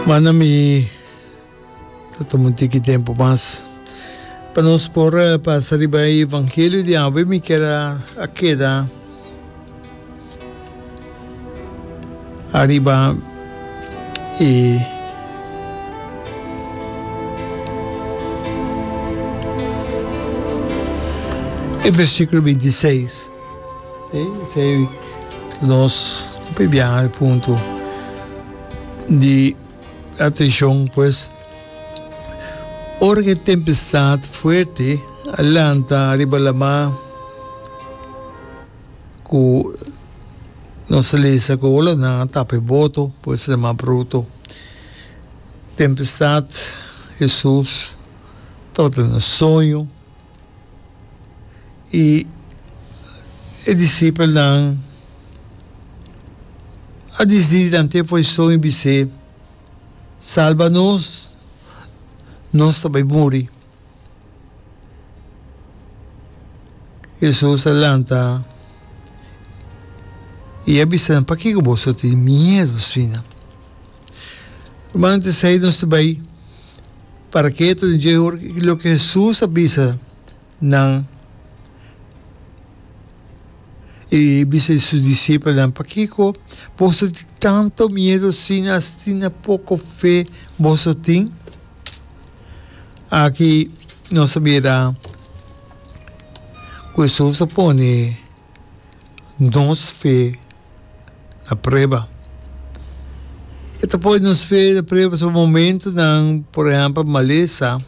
Manda mi ta tuma un tiki tempu mas pa nos por pasa riba e evangelio di awe. Mi kier a a keda ariba e e versikulo binti seis. Esei nos papia biaha e punto di atencion pues, ora cu e tempestad fuerte a lanta riba lamar cu nos a lesa cu olanan a tapa e boto pues lamar bruto, tempestad, Jesus, ta tabata na soño. i e disipelnan a disidi lant'e foison i bis'é, Salba nos, nos ta bai muri. Hesus a lanta i a bisa nan, Pakiko boso tin miedu asina? Rumannan ta esei nos ta bai para ketu den dje hora. I loke Hesus a bisa nan, i bisa di su disipelnan, Pakiko boso tin tantu miedu asina? Asina poko fe boso tin? Aki nos a bira ku Hesus a pone. nos fe na prueba. E ta pone nos fe na prueba pasobra momentunan, por ehempel, malesa,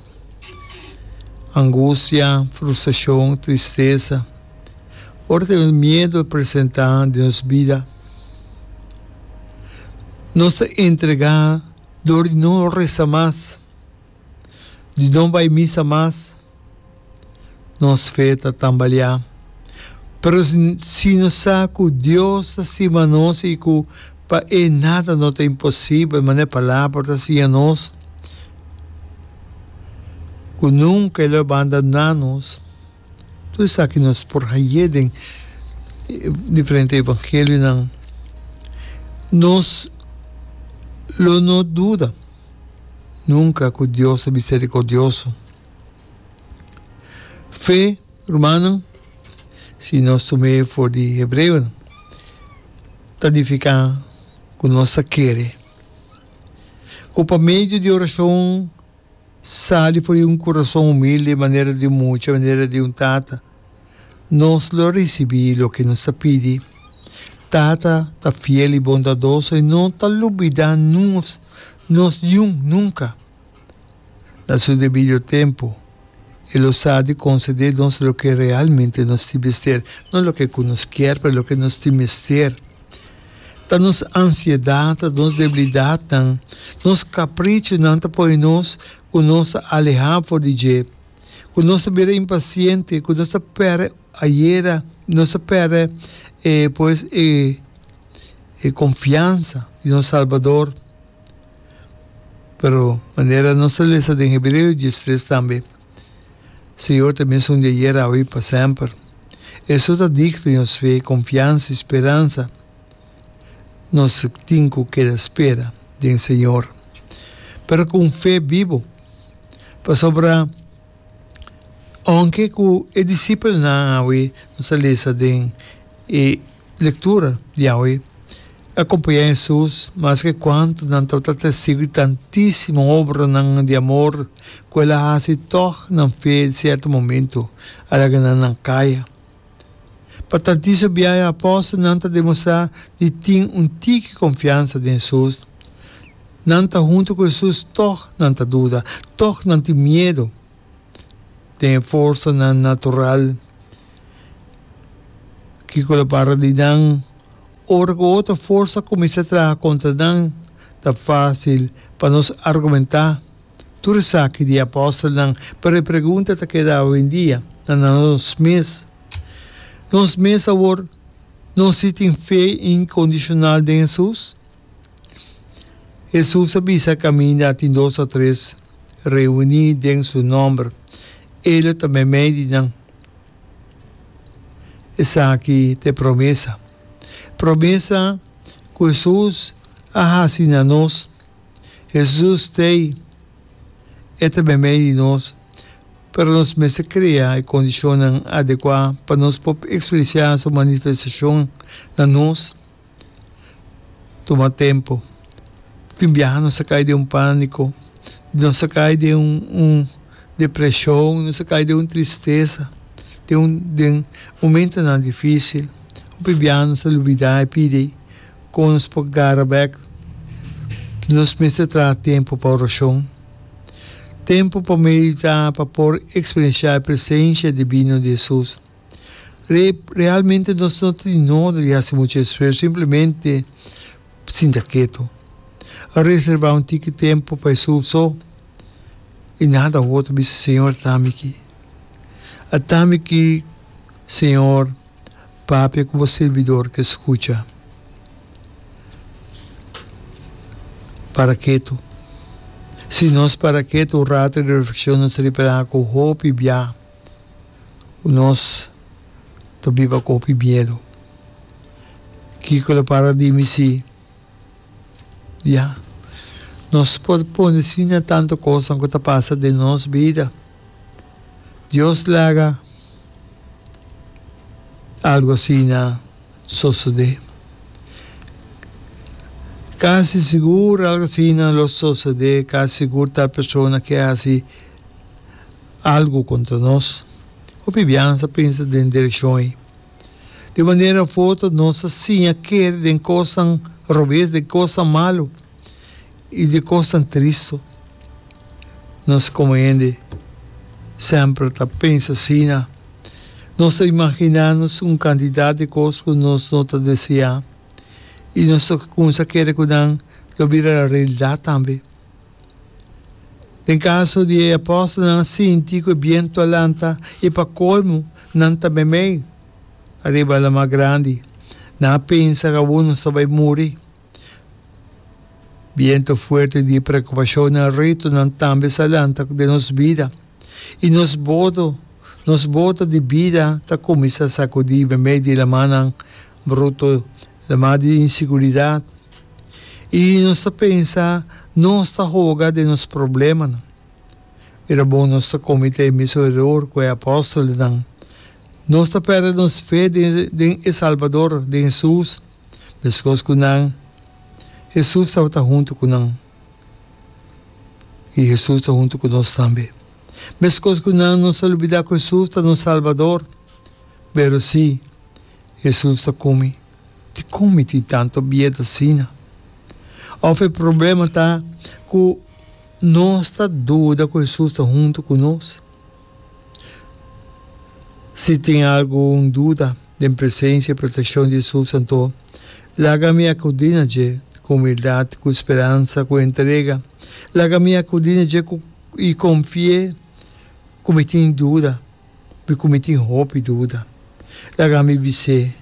angustia, frustracion, tristesa, ora ku e miedu a presenta den nos bida, nos ta entrega dor di no resa mas. di no bai misa mas, nos fe ta tambaliá. Pero si no sa ku Dios ta stima nos i ku pa E nada no ta imposibel, manera E Palabra ta siña nos, ku nunka E lo bandoná nos, tur esaki nos por hañ'é den diferente evangelionan. Nos lo no duda. Nunka ku Dios ta miserikordioso. Fe, rumannan, si nos tum'é for di hebreonan, ta nifiká ku nos ta kere ku pa medio di orashon sali for di un kurason humilde manera di un mucha, manera di un tata. Nos lo risibí loke nos ta pidi. Tata ta fiel i bondadoso i no ta lubidá nos nos yun nunka. Na su debido tempu, e lo sa di konsedé nos loke realmente nos tin mester, no loke ku nos kier, pero loke nos tin mester. Ta nos ansiedat, nos debilidatnan, nos kaprichonan ta pone nos ku nos ta alehá for di dje. Ku nos ta bira impasiente, ku nos ta pèrdè ayera, nos ta pèrdè e pues e e konfiansa di nos Salbador. Pero manera nos ta lesa den Hebreos dies tres tambe, Señor ta mesun di ayer, awe i pa semper. Eso ta digno di nos fe, konfiansa i speransa. nos tin ku keda spera den Señor, pero ku un fe bibu. Pasobra aunke ku e disipelnan awe, nos a lesa den e lektura di awe, a kompañá Hesus maske kuantu nan tabata testigu di tantísimo obranan di amor ku el a hasi, tòg nan fe sierto momentu a laga nan na kaya. Pa ta disa biaha e apòstelnan ta demostrá di tin un tiki konfiansa den Hesus. Nan ta huntu ku Hesus tòg nan ta duda, tòg nan tin miedu den e forsanan natural. Kiko lo para di nan? Ora ku otro forsa kuminsá traha kontra nan, ta fásil pa nos argumentá. Tur esaki di apòstelnan pa repregunta ta keda awendia na nos mes. Nos mes awor, nos si tin fe inkondishonal den Hesus? Hesus a bisa, Kaminda tin dos òf tres reuní den su nòmber, e lo ta meimei di nan. Esaki ta e promesa. Promesa ku Hesus a hasi na nos Hesus ta ei, E ta meimei di nos, pero nos mester krea e kondishonnan adekuá pa nos por ekspresiá Su manifestashon na nos. Tuma tempu. Tin un biaha nos a kai den un pániko, nos a kai den un depreshon, nos a kai den un tristesa, den momentonan difísil. Hopi biaha nos a lubidá e pidi. Con nos por gara bek? Nos mester traha tempu pa oracion, tempu pa medita pa por experiencia e presencia divino di Jesus. Re, realmente nos no ta di noda di haci mucha esfuerzo, simplemente sinta keto. A reserva un tiki tempu pa Jesús so y nada otro, bisa, Señor, a ta miki. A ta miki, Señor. papia ku bo sirbidor ke skucha. Para ketu. Si nos para ketu un rato di reflekshon nos ta ripela ku hopi bia ku nos ta biba ku hopi miedu. Kiko lo para di mi si? Ya. Nos por pone asina tantu kosnan ku ta pasa den nos bida. Dios laga algu asina sosodé. Kasi sigur algu asina lo sosodé, kasi sigur tal persona ke hasi algu kontra nos. Hopi biaha nan sa pensa den direkshon ei. Di manera foto nos ta siña kere den kosnan robes, den kosnan malu i den kosnan tristu. Nos komo hende semper ta pensa asina. Nos ta imaginá nos un kantidat di kos ku nos no ta deseá i nos ta kumsa kere ku nan lo bira realidad tambe. Den kaso di e apòstelnan a sinti ku e bientu a lanta i pa kolmu nan tambe mei ariba laman grandi. Nan a pensa kaunu sta bai muri. Bientu fuerte di preokupashonnan ritu nan tambe sa lanta den nos bida, i nos boto nos boto di bida ta kuminsá sakudí medio di lamannan. bruto lamá di inseguridat i nos ta pensa nos ta hoga den nos problemanan. Bira bon nos ta kometé e mesun eror ku e apòstelnan. Nos ta pèrdè nos fe den e Salbador, den Hesus. Meskos ku nan, Hesus tabata huntu ku nan, i Hesus ta huntu ku nos tambe. Meskos ku nan, nos ta lubidá ku Hesus ta nos Salbador, pero sí, Hesus ta ku mi, dikon mi tin tantu biedu asina? Òf e problema ta ku nos ta duda ku Hesus ta huntu ku nos? Si tin algun duda den presensia i protekshon di Hesus, anto laga mi akudí na dje ku humildat, ku speransa, ku entrega. Laga mi akudí na dje i konfié ku mi tin duda. mi ku mi tin hopi duda. Laga mi bis'é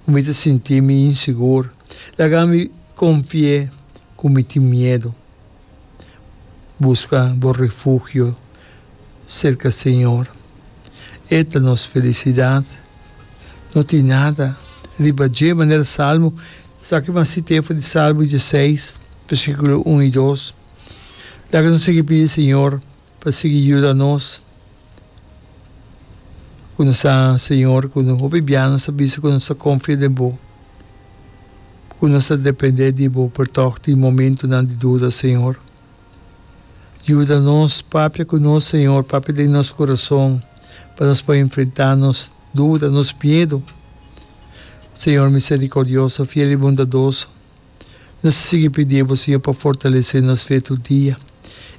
ku mi ta sinti mi insigur. Laga mi konfi'é ku mi tin miedu. Buska bo refugio serka Señor. E ta nos felisidat. No tin nada riba dje manera salmo. Esaki mas sitefo di Salmo dje seis, versíkulo un i dos. Laga nos sigui pidi Señor Pa sigui yuda nos ku no sa Señor, ku no hopi bia nos a bisa ku nos ta konfia den bo, ku nos ta depende di bo por tòg tin momentunan di duda, Señor. Yuda nos, papia ku nos, Señor, papia den nos kurason pa nos por enfrentá nos duda, nos miedu. Señor miserikordioso, fiel i bondadoso. Nos a sigui pidi bo, Señor, pa fortalesé nos fe tur dia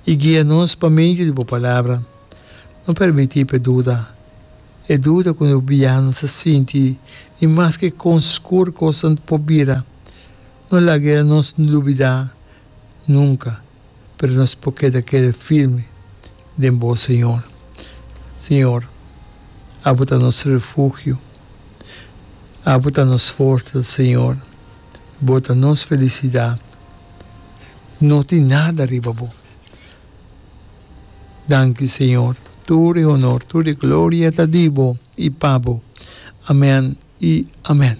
i guia nos pa medio di bo Palabra. No permití pa e duda, e duda ku nos bia nos a sinti di maske kon skur kosnan por bira, no laga el nos lubidá nunka, pero nos por keda keda firme den bo, Señor. Señor, abo ta nos refugio, abo ta nos forsa, Señor. Bo ta nos felisidat. No tin nada riba bo. Danki, Señor. Tur e honor, tur e gloria ta di bo i pa bo. Amen i amen.